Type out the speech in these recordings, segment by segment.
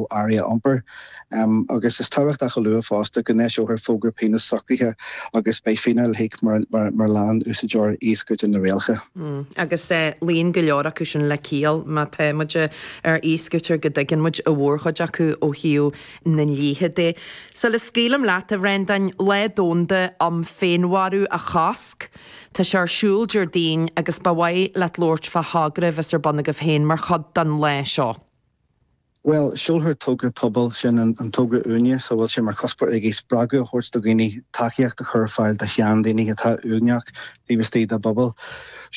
ó earraí a iompar. Agus is tábhachtach a lua fosta go n-eiseofar fógra pionós socraithe agus beidh fíneáil le híoc mura leanann úsáideoir e-scooter na rialacha. Agus luíonn go leor acu sin le ciall, má tá muid ar e-scooter go dtuigeann muid a mhórchuid acu ó thaobh na ndlíthe de. Sula scaoilim leat, a Bhreandáin, Lá Domhanda um Féinmharú a Chosc tá sé ar siúl Déardaoin agus ba mhaith leat labhairt fá thogra a bheas ar bun agaibh féin mar chuid den lá seo. Bhuel, seolfar togra pobail, sin an togra Uaigneas a bhfuil sé mar chuspóir aige spreagadh a thabhairt do dhaoine tacaíocht a chur ar fáil do sheandaoine atá uaigneach taobh istigh dá bpobal.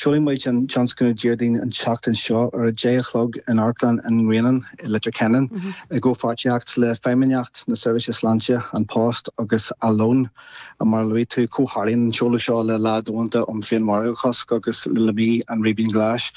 Seolfaidh muid an tionscnamh Déardaoin an tseachtain seo ar a deich a chlog in Amharclann an Ghrianáin i Leitir Ceanainn i gcomhpháirtíocht le Feidhmeannacht na Seirbhíse Sláinte, An Post agus Alone. Mar a luaigh tú, comhtharlaíonn an seoladh seo le lá domhanda um féinmharú a chosc agus le Mí an Ribín Ghlais.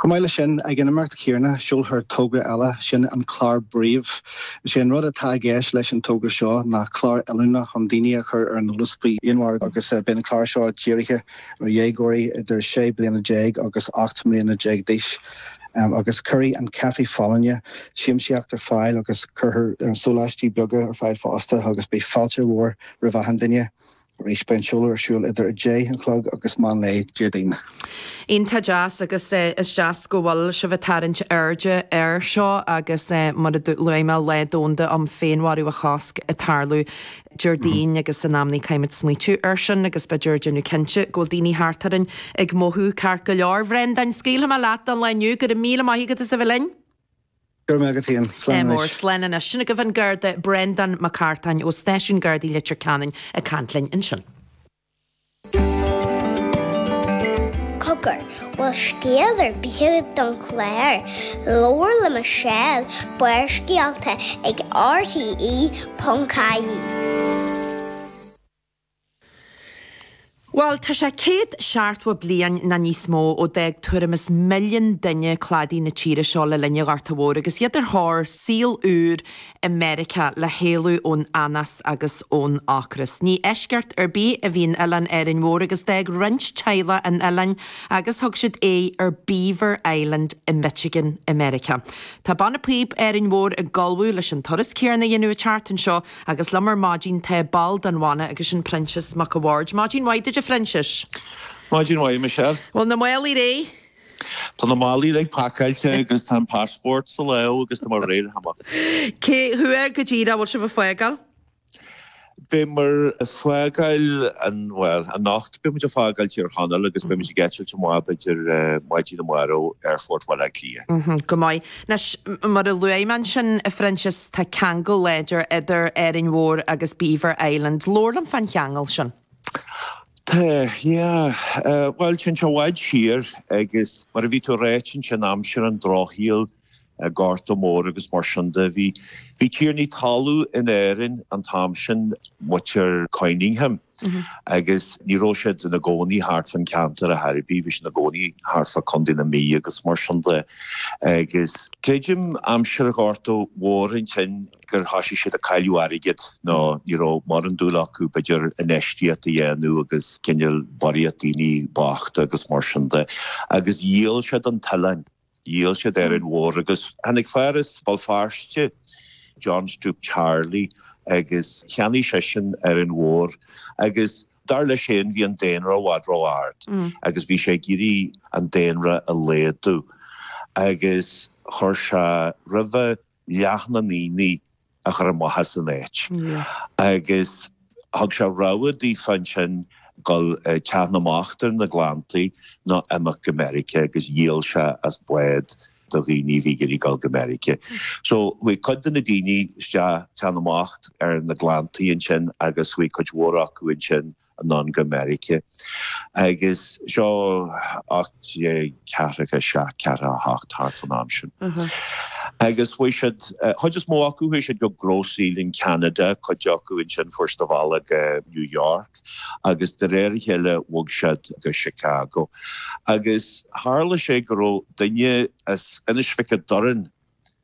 Chomh maith leis sin, ag an imeacht chéarna, seolfar togra eile, sin an clár Brief. Is é an rud atá i gceist leis an togra seo ná clár oiliúna chun daoine a chur ar an eolas faoi fhéinmharú agus beidh an clár seo dírithe ar dhéagóirí idir sé bliana déag agus ocht mbliana déag d'aois. am agus cuirfidh an caife folláine siamsaíocht ar fáil agus cuirfear sóláistí beaga ar fáil fosta agus beidh fáilte mhór roimh achan duine. Arís, beidh an seoladh ar siúl idir 10 a chlog agus meán lae Déardaoin. Iontach deas agus is deas go bhfuil sibh ag tarraingt airde air seo agus mar a luaigh mé Lá Domhanda um Féinmharú a Chosc ag tarlú Déardaoin agus in amannaí caithfidh muid smaoitiú air sin agus bheith ag déanamh cinnte go bhfuil daoine thart orainn ag mothú ceart go leor. Bhreandáin, scaoilfidh mé leat don lá inniu. Go raibh míle maith agat as a bheith linn. Go raibh maith agat féin. Slán anois. Slán anois. Sin agaibh an Garda, Breandán Mac Cartáin ó Stáisiún Gardaí Leitir Ceanainn ag caint linn ansin. Cogar, bhfuil scéal ar bith agat don chlár, Labhair le Michelle, Barrscéalta ag RTÉ.ie. Bhuel, tá sé céad seachtó bliain nó níos mó ó d'fhág tuairim is milliún duine cladaí na tíre seo le linn a' Ghorta Mhóir agus iad ar thóir saol úr i Meiriceá le héalú ón anás agus ón ocras. Ní eisceacht ar bith a bhí in Oileán Árainn Mhór agus d'fhág roinnt teaghlach an t-oileán agus thug siad aghaidh ar Beaver Island i Michigan i Meiriceá. Tá Banna Píob Árainn Mhór ag ullmhú leis an turas céanna a dhéanamh an tseachtain seo agus liom ar maidin tá ball den bhanna agus sin Proinsias Mac a' Bhaird. Maidin mhaith duit a Phroinsiais. Maidin mhaith Michelle. Bhfuil na málaí réidh? Tá na málaí uilig pacáilte agus tá an passport sa lámh agus tá muid réidh le himeacht. Cá huair go díreach a bhfuil sibh ag fágáil? Beidh muid ag fágáil an, bhuel, anocht beidh muid ag fágáil Tír Chonaill agus beidh muid ag eitilt amach b'fhéidir maidin amárach aerfort Bhaile Átha Cliath. Go maith. Anois, mar a luaigh mé ansin, a Phroinsias, tá ceangal láidir idir Árainn Mhór agus Beaver Island. Labhair liom fán cheangal sin. Tá, yeah. Bhuel, téann sé i bhfad siar agus mar a bhí tú a rá téann sé in aimsir an drochshaoil, Gorta Mór agus mar sin de. Bhí, bhí tiarnaí talún in Árainn an t-am sin, muintir Conyngham, agus ní raibh siad ina gcónaí thart fán ceantar ar chor ar bith, bhí siad ina gcónaí thart fá Contae na Mí agus mar sin de. Agus creidim aimsir Ghorta Mhóir ansin, gur thoisigh siad ag cailleadh airgid nó ní raibh mórán dúil acu, b'fhéidir, infheistíocht a dhéanamh agus cineál barraíocht daoine bochta agus mar sin de agus dhíol siad an t-oileán, dhíol siad Árainn Mhór agus tháinig fear as Béal Feirste, John Stoupe Charley, agus cheannaigh seisean Árainn Mhór agus dar leis féin bhí an daonra i bhfad ró-ard agus bhí sé ag iarraidh an daonra a laghadú agus chuir sé roimhe, leath na ndaoine a chur amach as an áit agus thug sé rogha daofa ansin dul go teach na mbocht ar na Gleanntaí nó imeacht go Meiriceá agus dhíol sé as bád do dhaoine a bhí ag iarraidh dul go Meiriceá. So, chuaigh cuid de na daoine isteach teach na mbocht ar na Gleanntaí ansin agus chuaigh cuid mhór acu ansin anonn go Meiriceá. Agus seo ocht déag ceathracha a seacht, ceathracha a hocht thart fán am sin. Agus bhí siad, chuid is mó acu, chuaigh siad go Grosse-Île in Canada, cuid acu ansin fuair siad a mbealach go New York agus de réir a chéile bhog siad go Chicago. Agus tharla sé go raibh duine as Inis Mhic a' Doirn,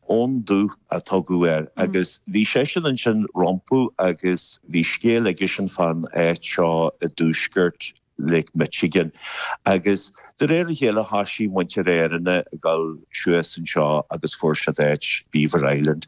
Eoin Dubh a tugadh air agus bhí seisean ansin rompu agus bhí scéal aigesean fán áit seo i dtuaisceart Lake Michigan agus de réir a chéile thoisigh muintir Áranna ag dul suas anseo agus fuair siad áit Beaver Island.